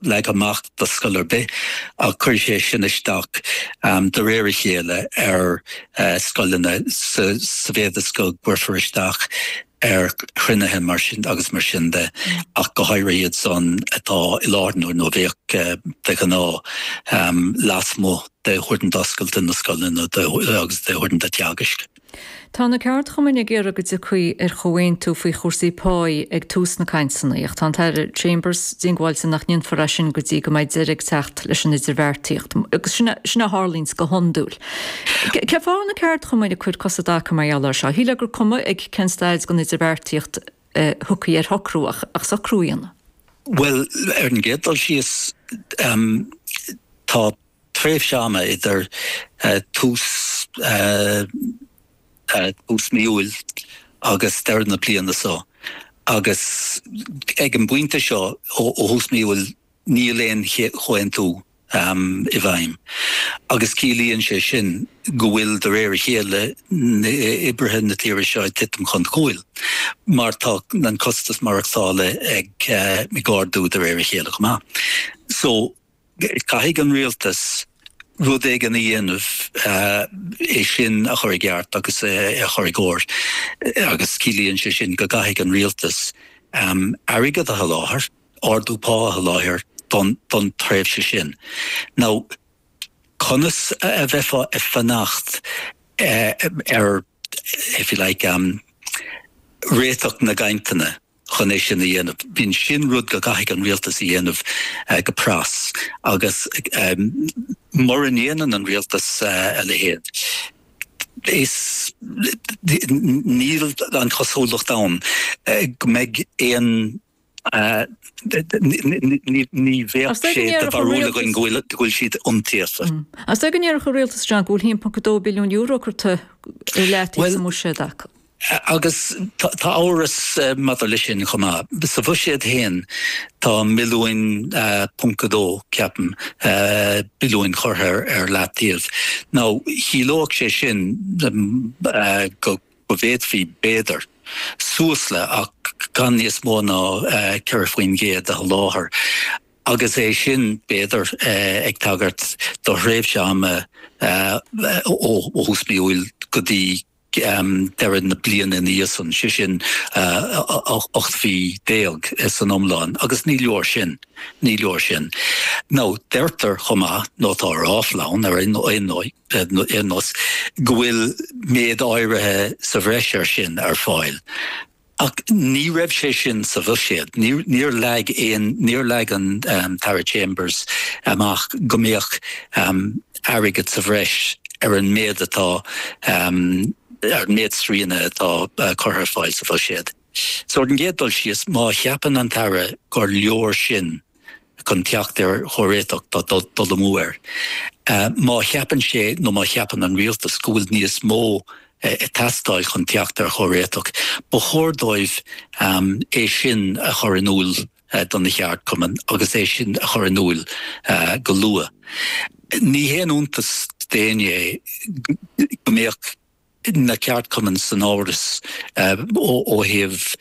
leagtha amach do scoil ar bith ach cuirfidh sé sin isteach de réir a chéile ar scoileanna sa mhéad is go gcuirfear isteach ar chruinnithe mar sin agus mar sin de ach go háirithe iad san atá i láthair nó a bhíodh de ghnáth lasmuigh d'uaireanta oscailte na scoileanna agus d'uaireanta teagaisc. Tá na ceardchumainn ag iarraidh go dtiocfaí ar chomhaontú faoi chúrsaí páí ag tús na gcainteanna, ach tá an tAire Chambers diongbháilte nach ndéanfar é sin go dtí go mbeidh deireadh ag teacht leis an idirbheartaíocht. Agus sin a tharlaíonns go hiondúil. Cén fáth a bhfuil na ceardchumainn ag cur cos i dtaca mar gheall air seo? Shílfeá gur cuma ag cén staid den idirbheartaíocht a thiocfaí ar shocrú, ach socrú a dhéanamh. Bhuel, ar an gcéad dul síos, tá tréimhse ama idir tús mhí Iúil agus deireadh na bliana so, agus ag an bpointe seo, ó thús mhí Iúil, níl aon chomhaontú i bhfeidhm, agus ciallaíonn sé sin go bhfuil, de réir a chéile, oibrithe na tíre seo ag titim chun cúil, mar tá an costas maireachtála ag ardú de réir a chéile chomh maith. So. Caithfidh an rialtas rud éigin a dhéanamh é sin a chur i gceart agus a chur i gcóir agus ciallaíonn sé sin go gcaithfidh an rialtas airgead a sholáthar, ardú pá a sholáthar don tréimhse sin. Nó conas a bheifeá ag fanacht ar, if you like, réiteach na gcainteanna? chun é sin a dhéanamh. Bíonn sin rud go gcaithfidh an rialtas a dhéanamh go pras agus mura ndéanann an rialtas a leithéid is níl an chosúlacht ann go mbeidh aon, ní bheadh sé de bharúil againn go bhfuil siad iontaofa. Is é go ndéarfadh an rialtas, a Dhé, go bhfuil €1.2 billiún curtha i leataobh sa mbuiséad acu. Agus tá amhras maidir leis sin chomh maith. Sa bhuiséad féin tá milliúin, ponc a dó, ceapaim, billiúin curtha ar leataobh. Now, chiallódh sé sin go bhféadfaí, b'fhéidir, suas le, ach gan níos mó ná, ceithre faoin gcéad a sholáthar. Agus é sin, b'fhéidir, ag tagairt do thréimhse ama ó thús mí Iúil go dtí, deireadh na bliana ina dhiaidh san, sé sin ocht mhí déag san iomlán, agus ní leor sin. Ní leor sin. Nó deirtear chomh maith, nó tá ráfla ann ar aon nós, go bhfuil méid áirithe sa bhreis air sin ar fáil. Ach ní raibh sé sin sa bhuiséad. Níor leag aon, níor leag an tAire Chambers amach go mbeadh airgead sa bhreis ar an méid atá, ar an méid srianta atá curtha ar fáil sa bhuiséad. So ar an gcéad dul síos, má cheapann an tAire gur leor sin, chun teacht ar chomhréiteach tá dul amú air. Má cheapann sé nó má cheapann an rialtas go bhfuil níos mó ag teastáil chun teacht ar chomhréiteach, ba chóir dóibh é sin a chur in iúl do na ceardchumainn agus é sin a chur in iúl go luath. Ní haon iontas d'éinne é go mbeadh. na ceardchumainn in amhras, ó thaobh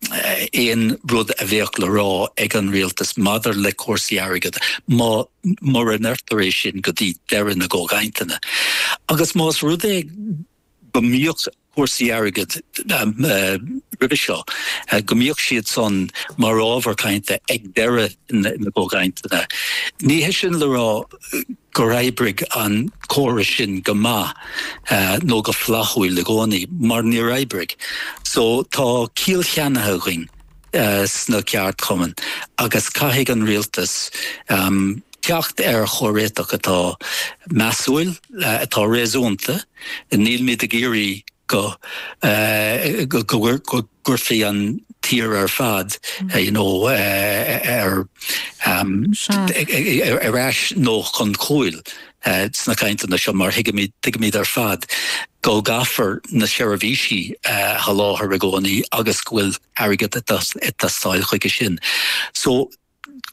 aon rud a bheadh le rá ag an rialtas maidir le cúrsaí airgid, mura ndéarfar é sin go dtí deireadh na gcomhchainteanna. Agus más rud é go mbíodh cúrsaí airgid roimhe seo, go mbíodh siad san mar ábhar cainte ag deireadh na gcomhchainteanna, ní hé sin le rá, gur oibrigh an córas sin go maith nó go flaithiúil i gcónaí, mar níor oibrigh. So, tá ciall cheannaithe againn sna ceardchumainn agus caithfidh an rialtas teacht ar chomhréiteach atá measúil, atá réasúnta. Nílimid ag iarraidh go gcuirfí an tír ar fad ar ais nó chun cúil sna cainteanna seo, mar tuigimid ar fad go gcaithfear na seirbhísí a sholáthar i gcónaí agus go bhfuil airgead ag teastáil chuige sin.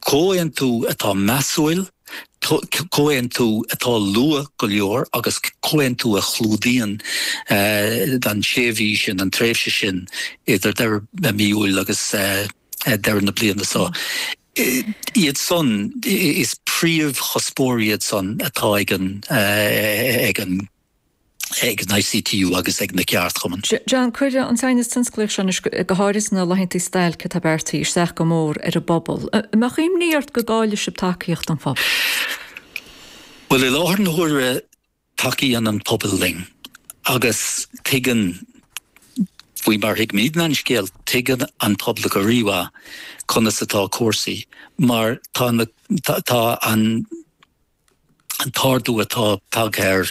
comhaontú atá measúil, comhaontú atá luath go leor agus comhaontú a chlúdaíonn an sé mhí sin, an tréimhse sin idir deireadh mhí Iúil agus deireadh na bliana seo. Iad san, is príomhchuspóirí iad san atá ag an. ag an ICTU agus ag na ceardchumainn. John, cuirfidh an t-aighneas tionsclaíoch seo anois go háirithe sna laethanta stailce atá beartaithe isteach go mór ar an bpobal. Mbeadh imní ort go gcaillfeadh sibh tacaíocht an phobail? Bhuel, i láthair na huaire tacaíonn an pobal linn agus tuigeann, faoi mar a thuigimid an scéal, tuigeann an pobal go rímhaith conas atá cúrsaí mar tá an an t-ardú atá tagtha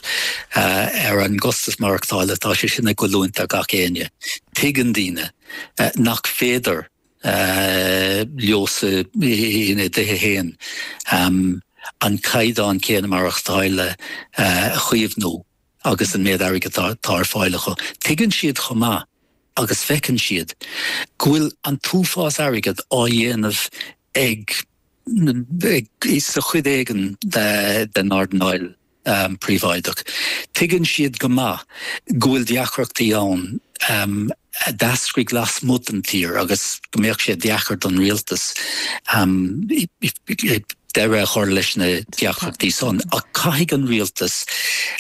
ar an gcostas maireachtála, tá sé sin ag goilliúint ar gach éinne. Tuigeann daoine nach féidir leosan, ina dtithe féin, an caighdeán céanna maireachtála a chaomhnú agus an méid airgid atá ar fáil acu. Tuigeann siad chomh maith, agus feiceann siad, go bhfuil an t-uafás airgid á dhéanamh ag. sa chuid éigin den earnáil phríobháideach. Tuigeann siad go maith go bhfuil deacrachtaí ann a d'eascraigh lasmuigh den tír agus go mbeadh sé deacair don rialtas deireadh a chur leis na deacrachtaí san. Ach caithfidh an rialtas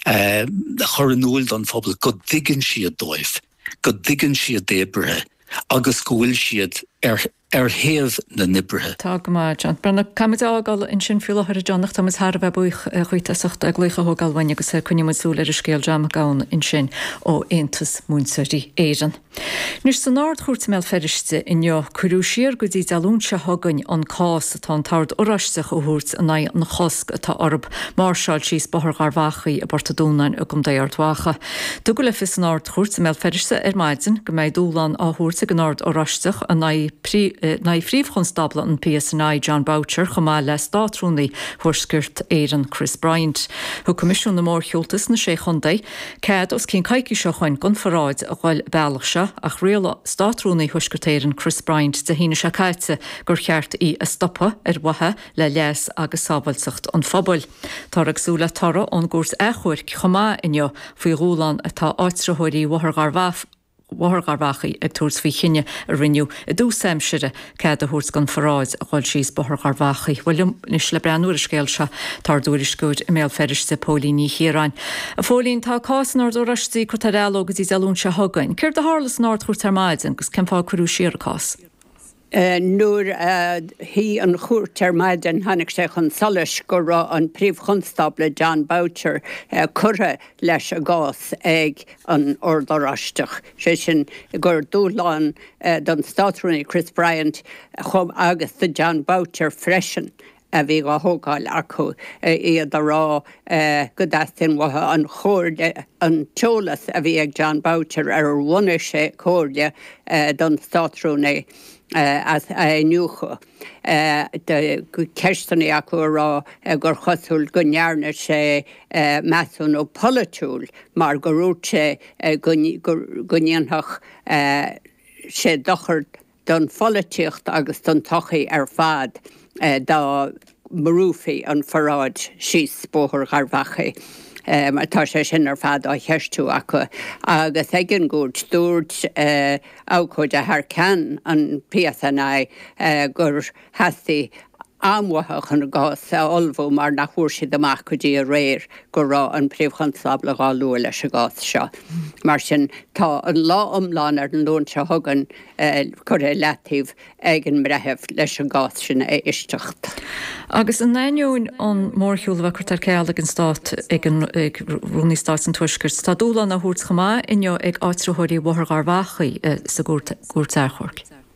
a chur in iúil don phobal go dtuigeann siad dóibh, go dtuigeann siad d'oibrithe agus go bhfuil siad ar. ar thaobh na n-oibrithe. Tá go maith, John. Faraor, caithfimid a fhágáil ansin faoi láthair, a John, ach táimid thar a bheith buíoch dhuit as ucht an glaoch a thógáil uainn agus coinneoidh muid súil ar an scéal John Mac Gabhann ansin ó Aontas Múinteoirí Éireann. Anois, san Ard-Chúirt i mBéal Feirste inniu, cuireadh siar go dtí Dé Luain seo chugainn an cás atá an tOrd Oráisteach a thabhairt in aghaidh an chosc atá orthu máirseáil síos Bóthar Gharbhachaidh i bPort a' Dúnáin i gContae Ard Mhacha. Tugadh le fios san Ard-Chúirt i mBéal Feirste ar maidin go mbeidh dúshlán á thabhairt ag an Ord Oráisteach in aghaidh Phríomh-Chonstábla an PSNI, Jon Boucher, chomh maith le Státrúnaí Thuaisceart Éireann, Chris Bryant. Thug Coimisiún na Mórshiúlta sna Sé Chontae cead os cionn coicíse ó shoin don pharáid a ghoil an bealach seo ach rialaigh Státrúnaí Thuaisceart Éireann, Chris Bryant, Dé hAoine seo caite gur cheart í a stopadh ar mhaithe le leas agus sábháilteacht an phobail. Táthar ag súil le toradh ón gcúirt achomhairc chomh maith inniu faoi dhúshlán atá áitritheoirí Bhóthar Gharbhachaidh ag tabhairt faoi chinneadh a rinneadh i dtús aimsire cead a thabhairt don pharáid a dhul síos Bóthar Gharbhachaidh. Bhuel, anois le breathnú ar an scéal seo, tá ár dtuairisceoir i mBéal Feirste, Póilín Ní Chiaráin. Póilín, tá cás an Oird Oráistigh curtha ar athló go dtí Dé Luain seo chugainn. Céard a tharla san Ardchúirt ar maidin agus cén fáth a cuireadh siar an cás? Nuair a shuigh an chúirt ar maidin tháinig sé chun solais go raibh an Príomh-Chonstábla John Boucher curtha leis an gcás ag an Ord Oráisteach, sé sin gur dúshlán don Státrúnaí Chris Bryant agus do John Boucher freisin a bhí á thógáil acu, iad a rá go dteastaíonn uathu an chomhairle, an t-eolas a bhí ag John Boucher, ar ar bhunaigh sé comhairle don Státrúnaí, a iniúchadh. Ceisteanna acu a rá gur chosúil go ndearna sé measúnú polaitiúil mar gur úirt sé go ndéanfadh sé dochar do don pholaitíocht agus don tsochaí ar fad dá mbrúfaí an pharáid síos Bóthar Gharbh Achaidh. Tá sé sin ar fad á cheistiú acu. Agus ag an gcúirt, dúirt abhcóide thar ceann an PSNI gur theastaigh am uathu chun a gcás a ullmhú mar nach bhfuair siad amach go dtí aréir go raibh an Príomh-Chonstábla dhá lua leis an gcás seo. Mar sin, tá an lá iomlán ar an Luan seo chugainn curtha i leataobh ag an mBreitheamh leis an gcás sin a éisteacht. Agus in ainneoin an mórshiúil a bheith curtha ar ceal ag an Stát, ag Rúnaí Stáit an Tuaiscirt, tá dúshlán á thabhairt chomh maith inniu ag áitritheoirí Bhóthar Gharbhachaidh sa gCúirt Achomhairc.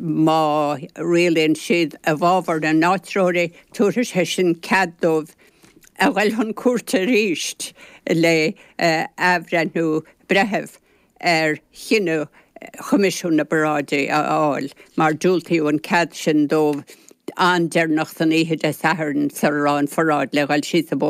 má rialaíonn siad i bhfabhar na n-áitreoirí, tabharfaidh sé sin cead dóibh a ghoil chun cúirte arís le athbhreithniú breithimh ar chinneadh Choimisiún na bParáidí a fháil, mar diúltaíodh an cead sin dóibh an-deireanach san oíche Dé Sathairn sula raibh an pharáid le ghoil síos an